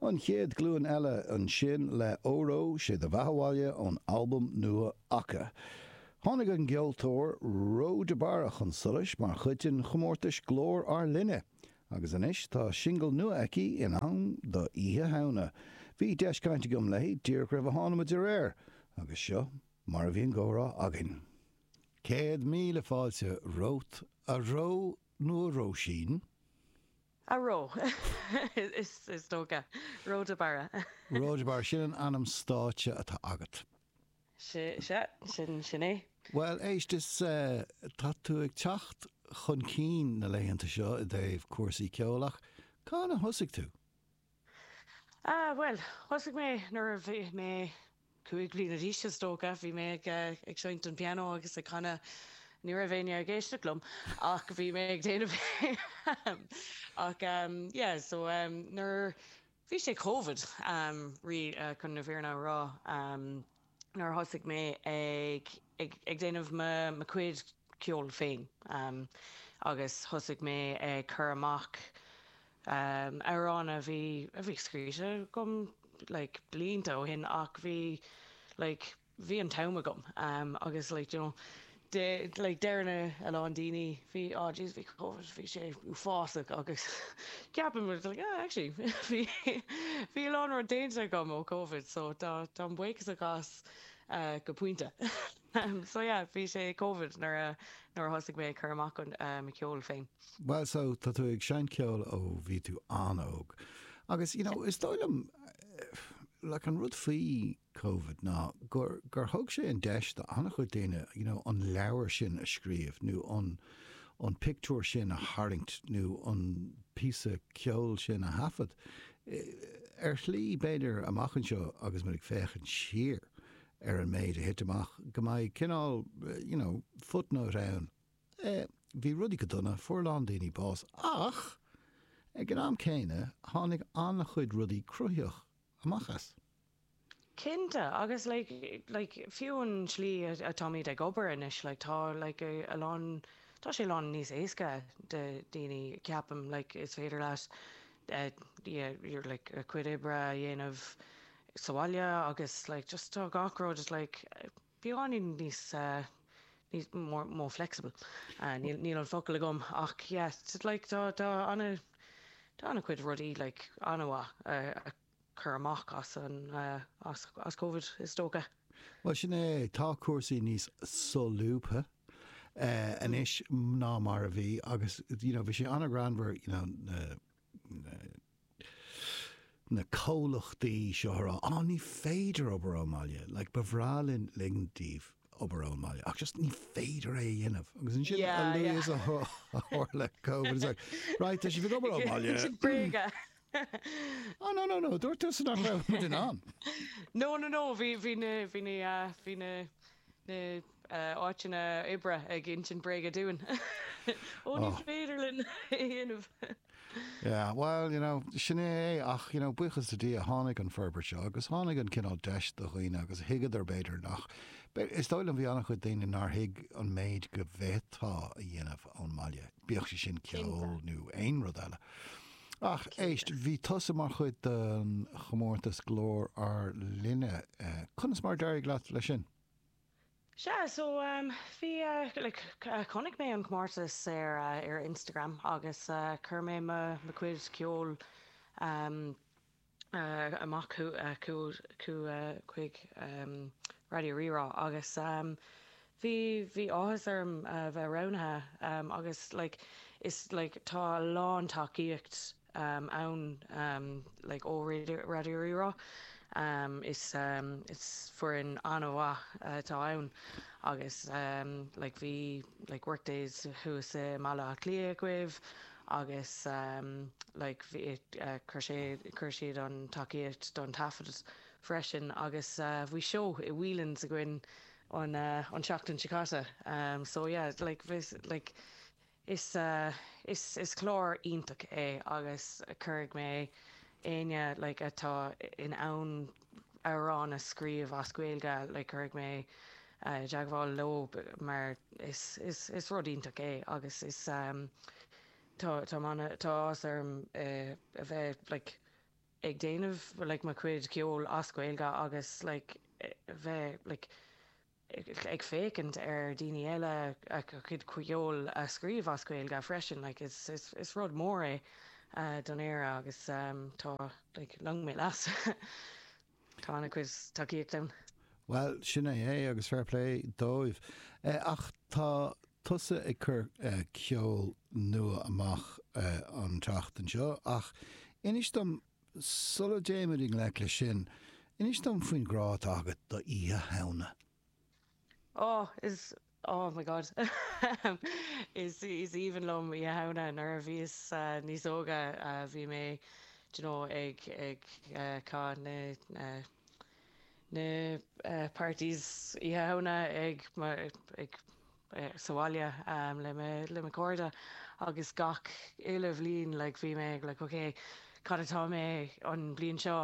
An Chéad Ghlúin Eile ansin le 'Óró Sé Do Bheatha 'Bhaile' ón albam nua acu. Tháinig an gceoltóir Ró de Barra chun solais mar chuid den chomórtais Glór Ár Linne agus anois tá singil nua aici in am do Oíche Shamhna. Bhí deis caint agam léi díreach roimh a thánamar ar aer agus seo mar a bhí an gcomhrá againn. Céad míle fáilte romhat, a Ró, nó a Róisín. A Ró, is dócha. Ró de Barra. Ró de Barra, sin an ainm stáitse atá agat. Sea, sea, sin, sin é. Bhuel, éist, is tá tú ag teacht chun cinn na laethanta seo i dtaobh cúrsaí ceoil ach cathain a thosaigh tú? Ah, bhuel, thosaigh mé nuair a bhí mé cúig bliana d'aois, is dócha. Bhí mé ag, eh, ag seinnt an pianó agus ag canadh. Ní raibh éinne ag éisteacht liom ach bhí mé ag déanamh é, em. Ach, em, yeah, so, em, nuair, bhí sé covid, em, really, eh, chun na fírinne a rá, em. nuair a thosaigh mé ag, ag, ag déanamh mo, mo chuid ceoil féin ehm agus thosaigh mé ag cur amach ehm amhráin a bhí, a bhí scríte agam like blianta ó shin ach bhí like, bhí an t-am agam ehm agus like you know, de, like, deireann a lán daoine, bhí, oh jeez, bhí Covid, bhí sé uafásach agus ceapaim, but it's like, ah, actually, bhí, bhí a lán rud déanta agam ó Covid, so tá, táim buíochasach as go pointe. So yeah, bhí sé i Covid nuair a, nuair a thosaigh mé ag cur amach an, mo cheol féin. Bhuel, so tá tú ag seinnt ceol ó bhí tú an-óg agus, you know, is dóigh liom, like, an rud faoi Covid ná gur gur thug sé an deis do an-chuid daoine you know an leabhar sin a scríobh nó an an pictiúr sin a tharraingt nó an píosa ceoil sin a thaifead. Ar shlí, b'fhéidir, amach anseo agus muid ag féachaint siar ar an méid a thit amach, go mbeidh cineál you know footnote ann, eh bhí rudaí go dona, fuair a lán daoine bás ach ag an am céanna tháinig an-chuid rudaí cruthaitheach amach as. Cinnte, agus like, like, fiú an tslí atáimid ag obair anois, like, tá, like, a lán, tá sé a lán níos éasca do dhaoine, ceapaim, like, is féidir leat, eh, yeah, you're like, a cuid oibre a dhéanamh sa bhaile agus, like, just tá gach rud just like, beagáinín níos, eh, níos, more, more flexible. Ah, níl, níl an focal agam ach, yeah, just like, tá, tá ana, tá ana cuid rudaí, like, ana mhaith a, a. cur amach as Covid, is dócha. Bhuel, sin é, tá cúrsaí níos solúbtha anois ná mar a bhí agus you know bhí sé an-ghreannmhar you know na na na comhlachtaí seo ag rá, á ní féidir obair ón mbaile, like ba bhreá linn linn daoibh obair ón mbaile ach just ní féidir é a dhéanamh agus ansin a luaithe is a tharla Covid, it's like right, tá sibh ag obair ón mbaile. Sin bréaga. Hehe. Oh no no no, dúirt tusa nach raibh muid in ann. No no no, bhí bhí na bhí na bhí na na áiteanna oibre ag insint bréaga dúinn. Ó ní féidir linn é a dhéanamh. Yeah, well, you know, sin é é ach, you know, buíochas le Dia tháinig an forbairt seo agus tháinig an cineál deis do dhaoine agus thuigeadar b'fhéidir nach b'fhéidir, is dóigh liom bhí an-chuid daoine nár thuig an méid go bhféadfá a dhéanamh ón mbaile. bíodh sé sin ceol nó aon rud eile. Ach éist, bhí tusa mar chuid den chomórtas Glór Ár Linne. Conas mar a d'éirigh leat leis sin? Sea, so bhí, like, chonaic mé an comórtas ar ar Instagram agus chuir mé mo chuid ceoil amach chuig Raidió Rí-Rá agus bhí bhí áthas orm a bheith roghnaithe agus like is like tá a lán tacaíocht ann like ó Raidió Rí-Rá is is foireann an-mhaith atá ann agus like bhí like workdays thuas i mBaile Átha Cliath againn agus like bhí chuir sé chuir siad an tacaíocht don taifead freisin agus bhí seó i Whelan's againn an an tseachtain seo caite so yeah like bhí like is is is clár iontach é agus cuirfidh mé éinne like atá in ann amhrán a scríobh as Gaeilge cuirfidh mé i dteagmháil leo mar is rud iontach é agus is tá tá áthas orm a bheith like ag déanamh like mo chuid ceoil as Gaeilge agus like a bheith like ag féachaint ar dhaoine eile a gcuid ceoil a scríobh as Gaeilge freisin. Is rud mór é don Éire agus tá long mé leas. Tá an-chuid tacaíocht ann. Bhuel, sin é é agus fair play dóibh. Ach tá tusa ag cur ceol nua amach an tseachtain seo ach inis dom Sula dtéimid i ngleic leis sin, inis dom faoin ghrá atá agat d'Oíche Shamhna. Oh, is, oh my God, ahem, is, is aoibhinn liom Oíche Shamhna. Nuair a bhíos níos óige, bhí mé, d'you know, ag, ag chaith na, na, na parties Oíche Shamhna ag mo, ag, bheith sa bhaile le mo chairde agus gach uile bhliain like bhí mé like ok cad atá mé an bhliain seo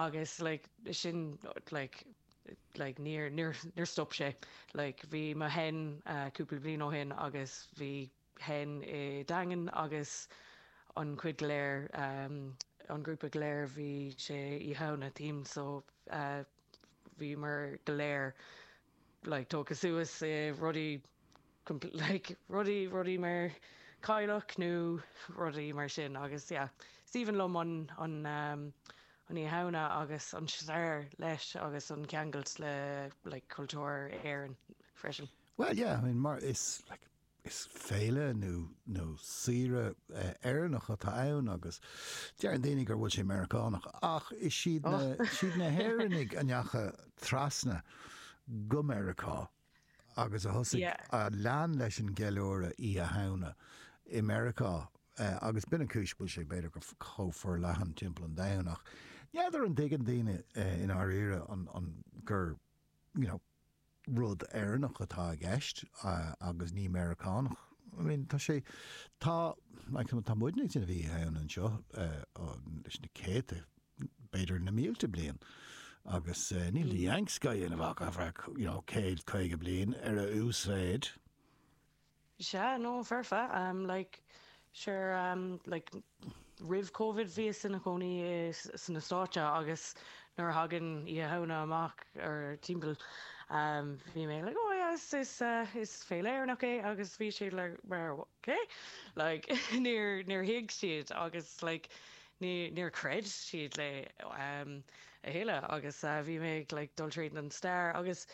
agus like sin like like níor níor níor stop sé like bhí mo hen cúpla bliain ó shin agus bhí hen i nDaingean agus an chuid go léir an grúpa go léir bhí sé Oíche Shamhna theme so bhíomar go léir like togtha suas i rudaí compl like rudaí rudaí mar cailleach nó rudaí mar sin agus yeah is aoibhinn liom an an an Oíche Shamhna agus an stair leis agus an ceangailt le like cultúr Éireann freisin. Bhuel yeah I mean mar is like Is féile nó nó saoire Éireannach atá ann agus deireann daoine gur bhfuil sé Meiriceánach ach is siad na, siad na hÉireannaigh a ndeachaigh trasna go Meiriceá agus a thosaigh, a lean leis an gceiliúradh Oíche Shamhna i Meiriceá agus b'in an cúis go bhfuil sé b'fhéidir go chomh forleathan timpeall an domhain ach n'fheadar an dtuigeann daoine i ndáiríre an, an, gur, you know. rud Éireannach atá i gceist agus ní Meiriceánach. I mean, tá sé, tá, like, you know, tá muidne ag déanamh Oíche Shamhna anseo leis na céadta, b'fhéidir na mílte bliain agus níl na Yanks á dhéanamh ach, you know, céad caoga bliain ar a uasmhéid. Yeah, no, for sure, um, like, sure, um, like, roimh Covid bhíos ina chónaí i, sna Stáit agus nuair a thagann Oíche Shamhna amach or timpeall, um, bhí mé like, oh yeah, is, is, uh, is féile Éireannach é agus bhí siad like mar, cé? Like, níor, níor thuig siad agus like ní, níor chreid siad liom a thuilleadh agus, uh, bhí mé ag like dul tríd an stair agus,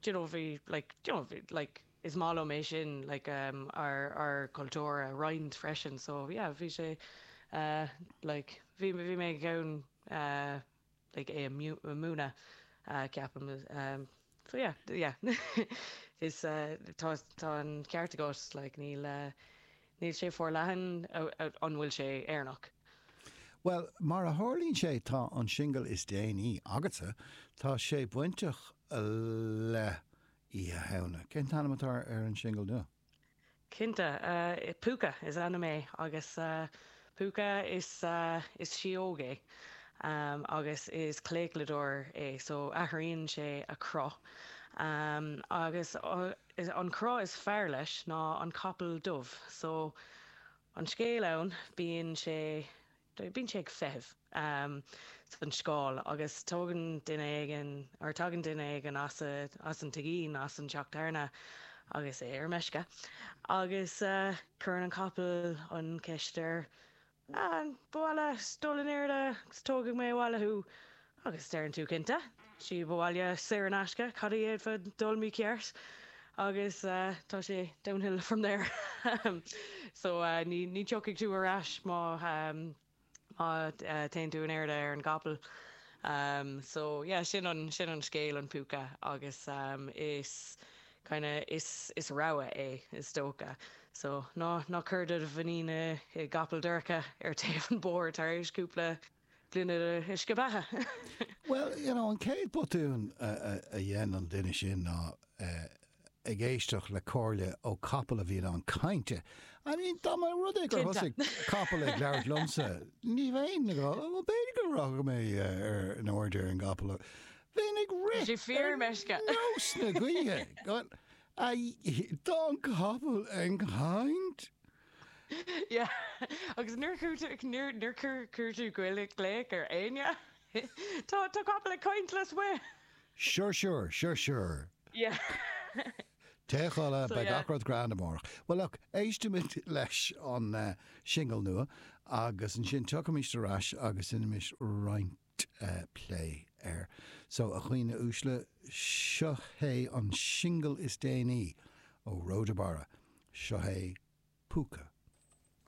do you know, bhí like, do you know, bhí like, is maith liom é sin like um ár ár cultúr a roinnt freisin so yeah bhí sé eh like bhí bhí mé in ann eh like é a miú- a múineadh eh ceapaim em so yeah yeah is eh tá tá an ceart agat like níl eh níl sé forleathan a- a- an bhfuil sé Éireannach? Bhuel, mar a tharlaíonn sé tá an singil is déanaí agatsa, tá sé bainteach le Oíche Shamhna. Cén t-ainm atá ar an singil nua? Cinnte, Púca is ainm é agus púca is síóg é agus is claochlaitheoir é so athraíonn sé a chruth agus an cruth is fearr leis ná an capall dubh so an scéal ann bíonn sé bíonn sé ag feitheamh san scáil agus tugann duine éigin, or tagann duine éigin as an tigín, as an teach tábhairne agus é ar meisce agus cuireann an capall an cheist air, Ah, ar mhaith leat dul in airde agus tógfaidh mé abhaile thú. Agus deireann tú, Cinnte, síob abhaile saor in aisce, cad a d'fhéadfadh dul mícheart agus tá sé downhill from there. So ní tiocfaidh tú ar ais má téann tú in airde ar an gcapall. So yeah, sin an scéal, an púca agus is kind of is rogha é, is dócha. So ná cuir do mhuinín i gcapall dorcha ar taobh an bóthar tar éis cúpla gloine le huisce beatha. Bhuel, you know, an chéad botún a dhein an duine sin ná ag éisteacht le comhairle ó chapall a bhí in ann caint. I mean, dá mba rud é gur thosaigh capall ag labhairt liomsa, ní bheinn ag rá, bhuel, b'fhéidir go raghadh mé in airde ar an gcapall, bheinn ag rith ar nós na gaoithe, dá mbeadh an capall ag caint. Yeah, agus nuair a chuir tú glaoch ar éinne, tá capall ag caint liom! Sure, sure, sure, sure. Yeah. Téigh a chodladh, beidh gach rud grand amárach. Well look, éistimis leis an singil nua agus ansin tiocfaimid ar ais agus déanfaimid roinnt. plé air. So, a dhaoine uaisle, seo hé an singil is déanaí ó Róda Barra, seo hé Púca.